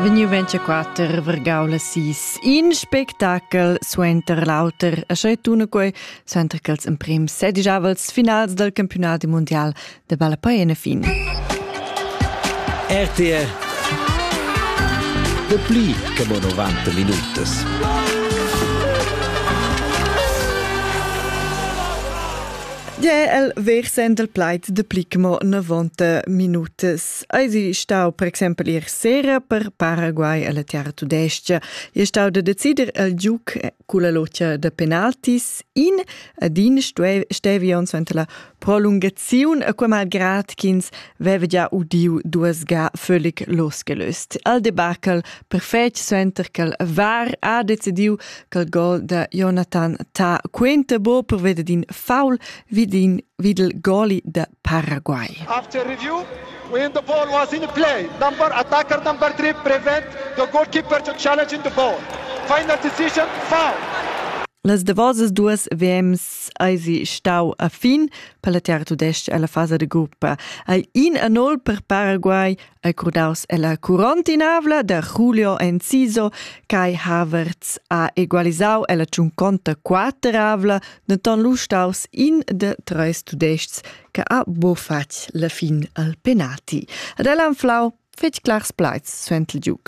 Vegniu 24 vargau las sis. In spectacel suenter l'auter, a schei tuna quei, suenter che els emprem sedigiavels finals del campionat mundial de balla paiena fin. RTR De pli che mo 90 minutas. Ge el versend il plaid de Plichmo novanta minutas. Eisi stau per exempel ier sera per Paraguay alla Terra Tudesca. E stau de decider il giuc culla locia de penaltis in ad in stevi ons ante la prolungaziun, a quei malgrad ch'ins veva già udiu duas ga völlig losgelöst. Al debakel perfetg suenter che var ha decidiu quel gol da Jonathan ta quenta bo per veder din foul vid din vid il goli da Paraguay. After review when the ball was in play number attacker number 3 prevent the goalkeeper to challenge the ball final decision foul Las davosas duas VMs eisi stau a fin per la tiara tudestg alla fasa de gruppa. Ei in a nol per Paraguay, e curdaus ella curontinavla da Julio Enciso Kai Havertz ha egualisau ella tschunconta quateravla, denton lu staus in de treis tudestgs che ha bufatg la fin al penalti. Ad el han flau fetg clars plaids suenter il giug.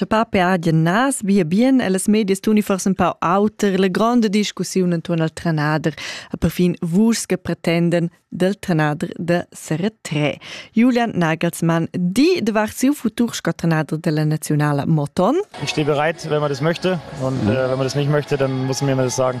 Cha pape hajan nas via bien e las medias tuni forsa ün pau auter la gronda discussiun intuorn al trenader e perfin vus che pretenden dal trenader da seretrè. Julian Nagelsmann, di davart siu futur sco trenader della Nazionala Moton. Ich stehe bereit, wenn man das möchte und äh, wenn man das nicht möchte, dann muss man mir das sagen.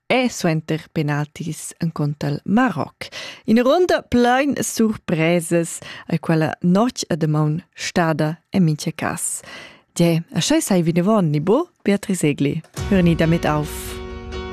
e suenter penaltis encunter Maroc. Ina runda plein surpresas, a quella notg a damaun stada en mincha cas. Ge, a schei sei vinavon ni bo, Beatrice Egli, hörni damit auf.